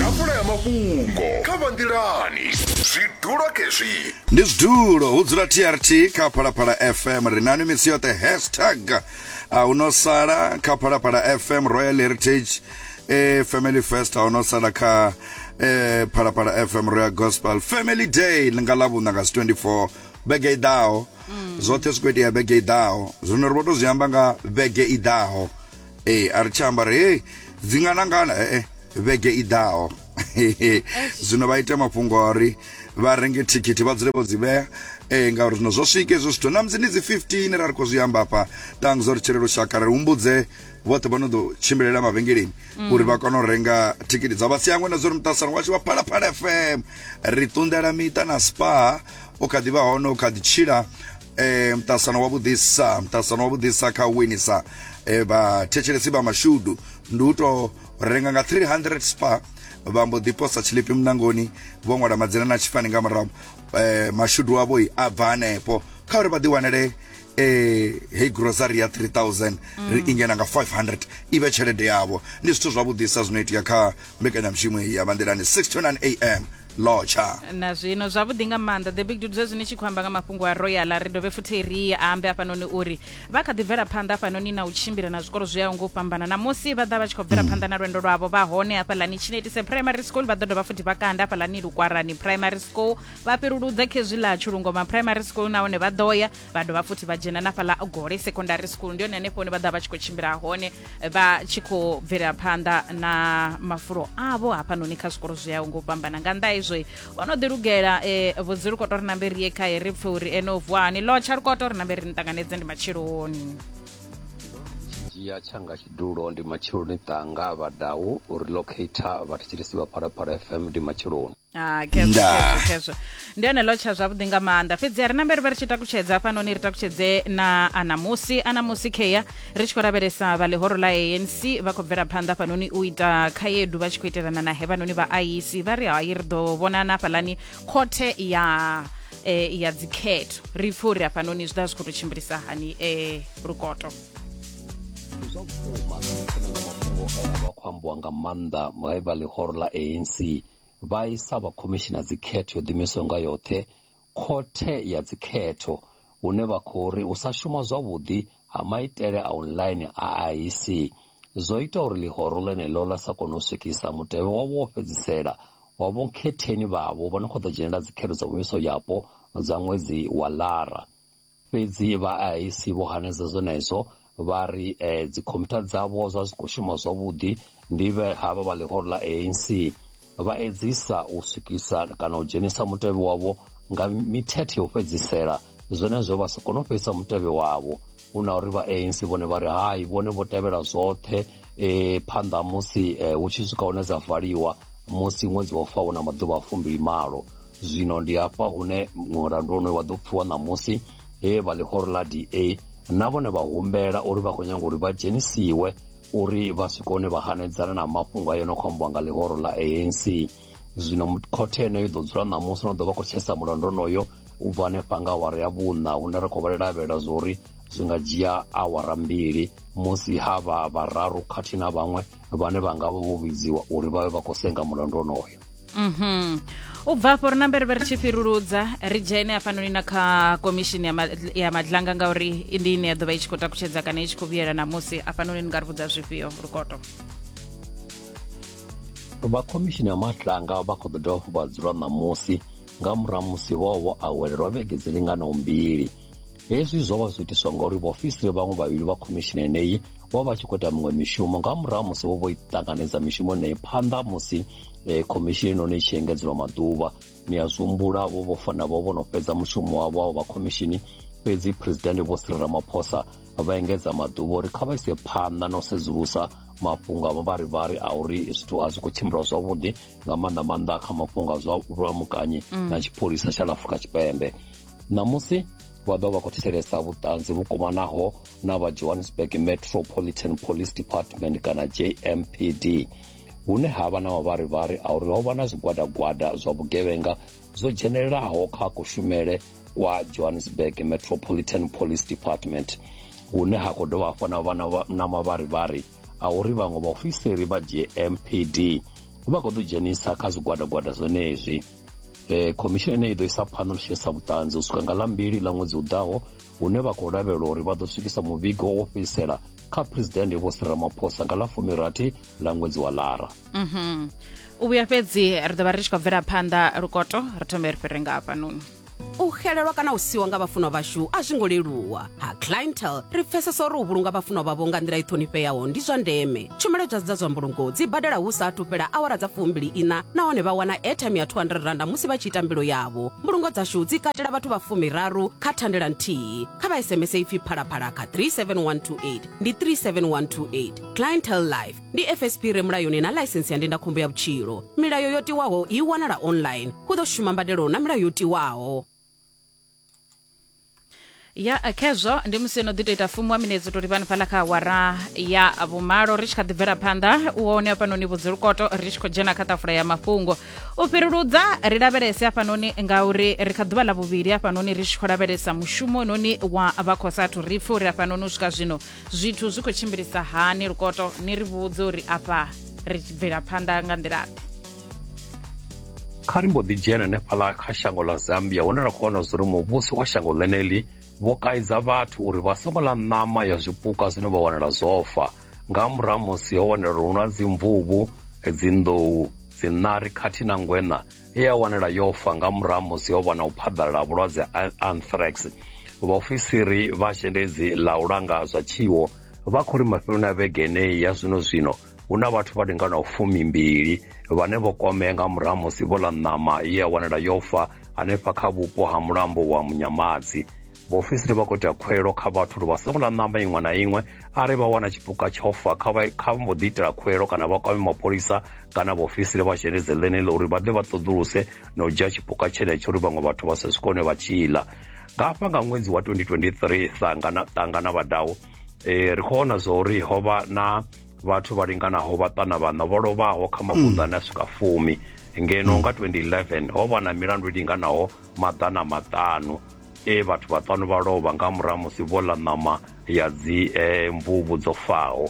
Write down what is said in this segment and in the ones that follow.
ḓafula ya mafhungo kha vha nḓilani zwidulo kezwi ndi zwidulo hu dzula trt kha phalaphala fm ri nani misi yoṱhe hashtag a hu no sala kha phalaphala fm royal heritage e family fest a hu no sala kha e phalaphala fm royal gospel family day ḽi nga ḽavhuṋa nga si 24 vhege i ḓaho zwoṱhe zwi khou itea vhege i ḓaho zwino ri vho to zwi amba nga vhege i ḓaho Ee, a ri tsha amba ri, Hei, dzi nga nangana he-e vhege i ḓaho. Zwino vha ite mafhungo a uri vha renge thikhithi vha dzule vho dzi vhea ee ngauri zwino zwo swika hezwo zwithu na musi ndi dzi 15 ra ri khou zwi amba afha tangs uri tshele lushaka ri humbudze vhoṱhe vha no ḓo tshimbilela mavhengeleni mm. uri vha kone u renga thikhithi dza vhasiangwe na zwo ri muṱasano washu wa phalaphala fm ri ṱunḓela miṱa na spa o kha ḓi vha hone o kha ḓi tshila eh mtasano wa vhudisa mtasano wa vhudisa kha winisa eh vhathetshelesi vha mashudu ndi u to renga nga 300 spa vha mbo ḓi posa tshilipi munangoni vho ṅwala madzina na tshifani nga murahu eh mashudu avho i a bva hanefho kha uri vha ḓi wanele eh hey grocery ya 3000 ri ingena nga 500 i vhe tshelede yavho ndi zwithu zwavhuḓisa zwino itea kha mbekanyamushumo iyi ya vha nḓilani 6 to 9 am lotsha na zwino zwavhuḓi nga maanḓa the big dude zwezwi ni tshi khou amba nga mafhungo a royal ri dovhe futhi ri ambe afhanoni uri vha kha ḓi bvela phanḓa afhanoni na u tshimbila na zwikolo zwi yaho ngo u fhambana na musi vha ḓa vha tshi khou bvela mm. phanḓa na lwendo lwavho vha hone hafhaḽani chinetise primary school vha ḓo dovha futhi vha kanda hafhaḽani lukwarani primary school vha fhiruludza khezwi ḽa tshulungoma primary school nahone vha ḓo ya vha dovha futhi vha dzhena na fhaḽa gole secondary school ndi yone hanefho hune vha ḓa vha tshi khou tshimbila hone vha tshi khou bvelela phanḓa na mafulo avho hafhanoni kha zwikolo zwi yaho ngo fhambana nga nnḓa hezwo o no ḓilugela um eh, vhudzi lukoto ri nambe ri ye khae ri pfe uri ene u vuwa hani lotsha lukoto ri nambe ri ni ṱanganedze ndi matsheloni dzhia tshanga tshidulo ndi matsheloni ṱanga vhadau uri locator vhathetshelesi vha phalaphala fm ndi matsheloni Ah, ndi one lotsha zwavhuḓi nga maanḓa fhedzi a ri na mberi vha ri tshi takutshedza hafhanoni ri takutshedze na anamusi anamusi kea ri tshi khou lavhelesa vha ḽihoro ḽa anc vha khou bvela phanḓa hafhanoni u ita khaedu vha tshi khou itelana na hevhanoni vha iec vha ri hai ri ḓo vhonana hafhalani khothe ya eh, ya dzikhetho ri pfhe uri hafhanoni zwi ḓa zwi khou tou tshimbilisa hani eh, lukoto zwa vhukuma mafhungo aya vha khou ambiwa nga maanḓa vhaivha ḽihoro ḽa anc Vha isa vha khomishina dzikhetho yo ḓiimisaho nga yoṱhe khothe ya dzikhetho hune vha khou ri u sa shuma zwavhuḓi ha maitele a online a IEC zwo ita uri ḽihoro ḽeneḽo ḽa sa kone u swikisa mutevhe wavho wo fhedzisela wa vhonkhetheni vhavho vha no khou ḓo dzhenela dzikhetho dza muvhiso yapo dza ṅwedzi wa Lara. Fhedzi vha IIC vho hanedza zwenezwo vha ri dzikhomphyutha dzavho zwa zwi khou shuma zwavhuḓi ndi vhe havha vha ḽihoro ḽa ANC vha edzisa u swikisa kana u dzhenisa mutevhe wavho nga mithethe ya u fhedzisela zwenezwo vha si kone u fhedzisa mutevhe wavho hu na uri vha ANC vhone vha ri hai vhone vho tevhela zwoṱhe e, phanḓa musi e, hu tshi swika hune dza valiwa musi ṅwedzi wa faho na maḓuvha a fumbili malo Zwino ndi hafha hune mulandu wonoyo wa ḓo pfiwa ṋamusi he vha ḽihoro ḽa DA na vhone vha humbela uri vha khou nyanga uri vha dzhenisiwe uri vha swike hone vha hanedzana na mafhungo a yo no khou ambiwa nga ḽihoro ḽa ANC zwino khothe yeneyo ḓo dzula ṋamusi no ḓo vha khou tshesa mulandu onoyo u bva hanefha nga awara ya vhuṋa hune ri khou vha lavhelela zwa uri zwi nga dzhia awara mbili musi ha vha vhararu khathihi na vhaṅwe vhane vha nga vha vho vhidziwa uri vha vhe vha khou senga mulandu onoyo mhm u bva afho ri na mbere ri tshi fhiruludza ri dzhene hafhanoni na kha komishini ya, ma, ya madlanga ngauri ndi ine ya ḓo vha i tshi khou takutshedza kana i tshi khou vhuyela namusi hafhanoni ni nga ri vhudza zwifhio lukoto vha khomishini ya madlanga vha khou ḓo dovha hafhu vha dzula ṋamusi nga murahu musi vho vho awelelwa vhege dzi linganaho mbili hezwi zwo vha zwiitiswa ngauri vhaofisiri vhaṅwe vhavhili vha khomishini yeneyi vho vha vha tshi khou ita miṅwe mishumo nga murahu musi vho vho i ṱanganedza mishumo yeneyi phanḓa musi eh, khomishini yenoni i tshi engedzelwa maḓuvha ni a zwihumbula vho vho fana vho vho no fhedza mushumo wavho wavho vha khomishini fhedzi presidente vho siri ramaphosa vha engedza maḓuvha uri kha vha ise phanḓa na u sedzulusa mafhungo a mavharivhari a uri zwithu a zwi khou tshimbila zwavhuḓi nga maanḓa maanḓa kha mafhungo a zwa vhulamukanyi mm. na tshipholisa tsha la afrika tshipembe Ṋamusi, vha ḓo vha vha khou thetshelesa vhuṱanzi vhu kovhanaho na vha Johannesburg Metropolitan Police Department kana JMPD hune ha vha na mavharivhari a uri ho vha na zwigwadagwada zwa vhugevhenga zwo dzhenelelaho kha kushumele kwa Johannesburg Metropolitan Police Department hune ha khou dovha hafhu na vha na mavharivhari a uri vhaṅwe vhaofisiri vha JMPD vha khou ḓo dzhenisa kha zwigwadagwada zwenezwi Khomishini ine i ḓo isa phanḓa ḽi tshi isa vhuṱanzi u swika nga ḽa mbili ḽa ṅwedzi u ḓaho hune vha khou lavhelelwa uri vha ḓo swikisa muvhigo wo fhedzisela kha phresidennde Vho Cyril Ramaphosa nga ḽa fumirathi ḽa ṅwedzi wa Lara. Mhm. U vhuya fhedzi ri ḓo vha ri tshi khou bvela phanḓa lukoto ri thome ri fhire nga hafhanoni. U xelelwa kana u siwa nga vhafunwa vhashu a zwi ngo leluwa. Ha Clientele, ri pfesesa uri u vhulunga vhafunwa vhavho nga nḓila i ṱhonifheaho ndi zwa ndeme. tshumelo dza dza zwa mbulungo dzi badela hu sa athu fhela awara dza fumbili ina nahone vha wana airtime ya 200 randa musi vha tshi ita mbilo yavho mbulungo dzashu dzi katela vhathu vha fumiraru kha thandela nthihi kha vha sms ipfi phalaphala kha 37128 ndi 37128 clientel life ndi fsp re mulayoni na ḽaisensi ya ndindakhombo ya vhutshilo milayo yo tiwaho i wanala online hu ḓo shuma mbadelo na milayo yo tiwaho ya khezwo ndi musi no ḓi to ita fumi wa minetse u to livhani fhaḽa kha awara ya vhumalo ri tshi kha ḓi bvela phanḓa u hone hafhanoni vhudzilukoto ri tshi khou dzhena kha ṱafula ya mafhungo u fhiruludza ri lavhelese hafhanoni ngauri ri kha ḓuvha ḽa vhuvhili hafhanoni ri tshi khou lavhelesa mushumo noni wa vha khou sathu ri pfhe uri hafhanoni u swika zwino zwithu zwi khou tshimbilisa hani lukoto ni ri vhudze uri afha ri bvela phanḓa nga nḓilaḓe kha ri mbo ḓi dzhena hanefhaḽa kha shango ḽa zambia hune ra khou wana zwa uri muvhuso wa shango ḽeneḽi vho kaidza vhathu uri vha songo ḽa ṋama ya zwipuka zwine vha wanala zwofa nga murahu musi ho wanala uri hu na dzimvuvhu dzinḓou dziṋari khathihi na ngweṋa e ya wanala yo fa nga murahu musi ho vha na u phaḓalala ha vhulwadze ha anthrax vhaofisiri vha zhendedzi ḽa u langa zwa tshiwo vha khou ri mafheloni a vhege eneyi ya zwino zwino hu na vhathu vha linganaho fumimbili vhane vho kwamea nga murahu musi vho ḽa ṋama ye ya wanala yo fa hanefha kha vhupo ha mulambo wa munyamadzi vhaofisiri vha khou ita khwelo kha vhathu uri vha songo ḽa ṋama iṅwe na iṅwe arali vha wana tshipuka tsho fa kha vha kha mbo ḓi itela khwelo kana vha kwame mapholisa kana vhaofisiri vha zhenedze ḽeneḽo uri vha ḓe vha ṱoḓuluse na u dzhia tshipuka tshenetsho uri vhaṅwe vhathu vha sa swikone vha tshi ḽa nga hafha nga ṅwedzi wa 2023 ṱangana ṱangana vhadau um ri khou vhona zwa uri ho vha na vhathu vha linganaho vhaṱana vhaṋa vho lovhaho kha mavunḓu ane a swika fumi ngeno nga 2011 ho vha na milandu i linganaho maḓana maṱanu e vhathu vhaṱanu vha lovha nga murahu musi vho ḽa ṋama ya dzi eh, mvuvhu dzo faho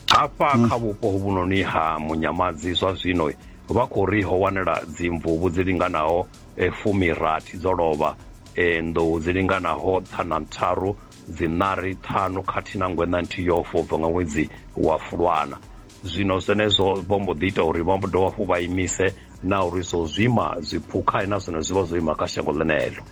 hafha mm. kha vhupo hovhunoni ha munyamadzi zwa zwino vha khou ri ho wanela dzimvuvhu dzi linganaho eh, fumirathi dzo lovha eh, nḓou dzi linganaho ṱhana ntharu Dziṋari ṱhanu khathihi na ngweṋa nthihi yo fa u bva nga ṅwedzi wa Fulwana. Zwino zwenezwo vho mbo ḓi ita uri vha mbo dovha hafhu vha imise na uri zwo zwima zwiphukha na zwone zwi vha zwo ima kha shango ḽeneḽo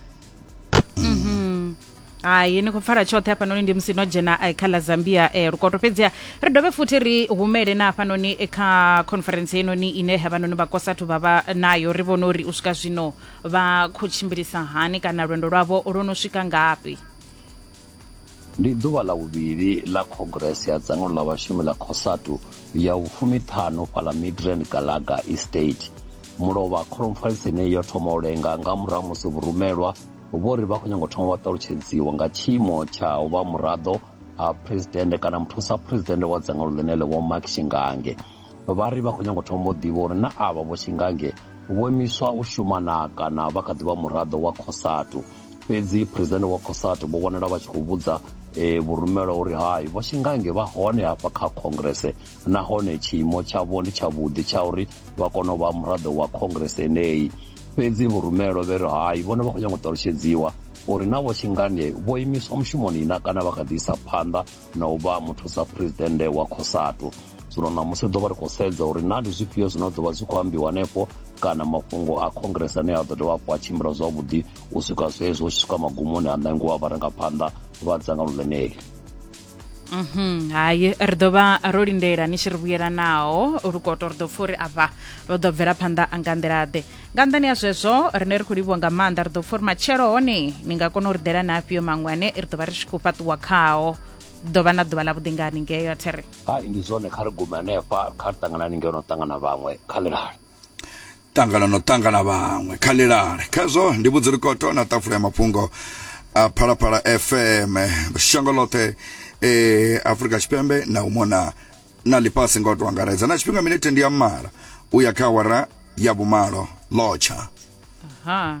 hai ni khou pfala tshoṱhe hafhanoni ndi musi no dzhena eh, kha ḽa zambia eh, lukoto fhedziha ri dovhe futhi ri humele na hafhanoni eh, kha conference heinoni ine havhanoni vhakosathu vha vha nayo ri vhone uri u swika zwino vha khou tshimbilisa hani kana lwendo lwavho lwo no swika ngafhi Ndi ḓuvha ḽa vhuvhili ḽa khongirese ya dzangano ḽa vhashumi ḽa Cosatu ya vhufumiṱhanu fhaḽa Midrand Galaga Estate. Mulovha khoromfalisi yeneyi yo thoma u lenga nga murahu ha musi vhurumelwa vho ri vha khou nyanga u thoma vha ṱalutshedziwa nga tshiimo tsha u vha muraḓo ha phuresidennde kana muthusa phuresidennde wa dzangano ḽeneḽo Vho Mark Shingange. vha ri vha khou nyanga u thoma u ḓivha uri na avha vho Tshingange vho imiswa u shuma na kana vha kha ḓi vha muraḓo wa Cosatu. Fhedzi phresidennde wa Cosatu vho vhonala vha tshi khou vhudza e, vhurumelwa uri hai vho Tshingange vha hone hafha kha khongrese nahone tshiimo tshavho ndi tshavhuḓi tsha uri vha kone u vha muraḓo wa khongrese yeneyi fhedzi vhurumelwa vhe ri hai vhone vha khou nyanga u ṱalushedziwa uri na vho Tshingange vho imiswa mushumoni na kana vha kha ḓi isa phanḓa na u vha muthusa phuresidennde wa cosatu zwino ṋamusi ḓo vha ri khou sedza uri na ndi zwifhio zwine ḓo vha zwi khou ambiwa hanefho kana mafhungo a congress ane a ḓo dovha hafhu a tshimbila zwavhuḓi u swika zwezwo u tshi swika magumoni a ṋangiwa vharangaphanḓa vha dzangano ḽeneli mhm hayi ri ḓo vha ro lindela ni tshi ri vhuyelanaho lukoto ri ḓo pfha uri afha vha ḓo bvela phanḓa nga nḓilaḓe nga nḓani ya zwezwo rine ri khou livhuwa nga maanḓa ri ḓo pfa uri matshelo hone ni nga kona u ri ḓela na afhio maṅwe ane ri ḓo vha ri tshi khou fhaṱuwa khao ḓo vha na ḓuvha ḽa vhuḓi nga haningei a there hai ndi zwone kha ri gume hanefha kha ri ṱangana haningei no ṱangana vhaṅwe kha ḽilale ṱangana no ṱangana vhaṅwe kha ḽilale khazwo ndi vhudzi likoto na ṱafula ya mafhungo a phalaphala fm shango ḽoṱhe e eh, afrika tshipembe na u mona na ḽifhasi nga u tou angaredza na tshifhinga minete ndi ya mala u ya kha awara ya vhumalo lotsha ha